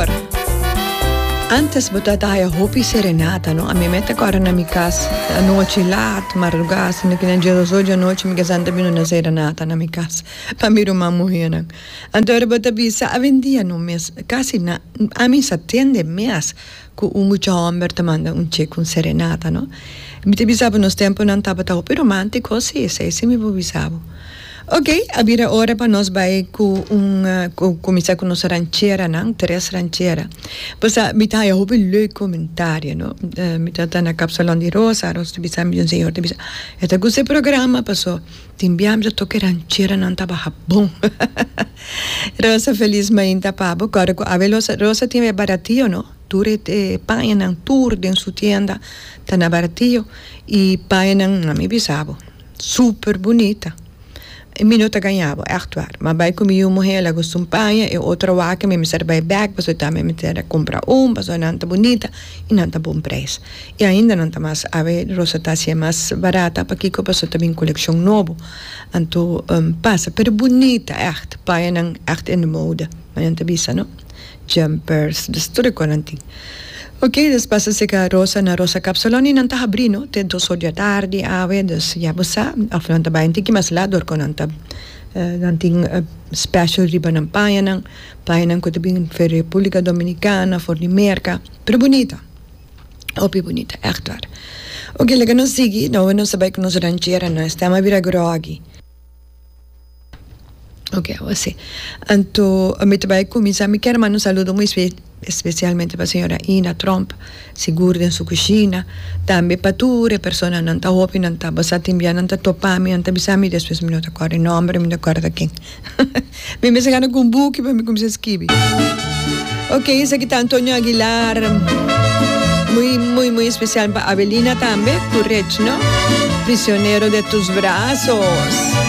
Señor. Antes bo ta ta haya hopi serenata no a mi me ta kora na mi kas anochi laat marduga siendo ke na dies dos dianochi mi kesan ta bini una serenata na mi kas pa mi ruman muhernan anto ora bo ta bisa awendia no mes casi na a mi sa tende mes cu un mucha homber ta manda un che con serenata no mi ta bisa bo nos temponan tabata hopi romantico si esei si mi bo bisa bo. Ok, a bira ora pa nos bai cu un cu cuminsa cu nos rancheranan, tres ranchera. Pasa mi ta haya hopi leuk comentario no. Mi ta ta na Capsalon di Rosa aros mi ta bisa un señor ta bisa e ta gusta e programa paso tin bia mi ta toca e rancheranan ta baha bon. Rosa Feliz mainta pabo cu ora cu Abel Rosa tin e baratillo no tur e e pañanan tur den su tienda ta na baratillo y pañanan mi bisa bo. Super bunita. E mi no ta gañabo echt war. Ma bai cu mi yu muhel a gusta un paña y otro wak mi a mester bai bek pasobra ta mi a mester a cumpra un pasobra nan ta bunita y nan ta bon prijs. Y ainda nan ta mas awe rosa ta hacia mas barata pakico pasobra ta bin coleccion nobo. Anto pasa pero bunita echt. Pañanan echt in de mode. Nan ta bisa no. Jumpers, des tur e konan tin. Ok, des pasa sega Rosa na Rosa Kapsalon i nan ta habrí no te dos or di atardi awe, dus ya bo sa, òf nan ta bai un tiki mas lat dòrkò nan ta nan tin special riba nan pañanan, pañanan ku ta bin for di Republika Dominikana, for di Merka, pero bunita, hopi bunita ègt war. Ok, laga nos sigui, no awe nos a bai ku nos rancheranan, stèma a bira grògi. Ok awa si. Anto mi ta bai kuminsá. Mi kier manda un saludo muy especialmente pa señora Ina Tromp, sigur den su kushina. Tambe pa tur e personanan, nan ta hopi, nan ta basá tin bia, nan ta topá mi, nan ta bisa mi despues mi no ta kòrda e nòmber, mi no ta kòrda ken. Mi mester gana ku un buki pa mi kuminsá skibi. Ok esaki ta Antonio Aguilar, muy, muy, muy especial pa Avelina tambe, ku Rechno, prisionero de tus brazos.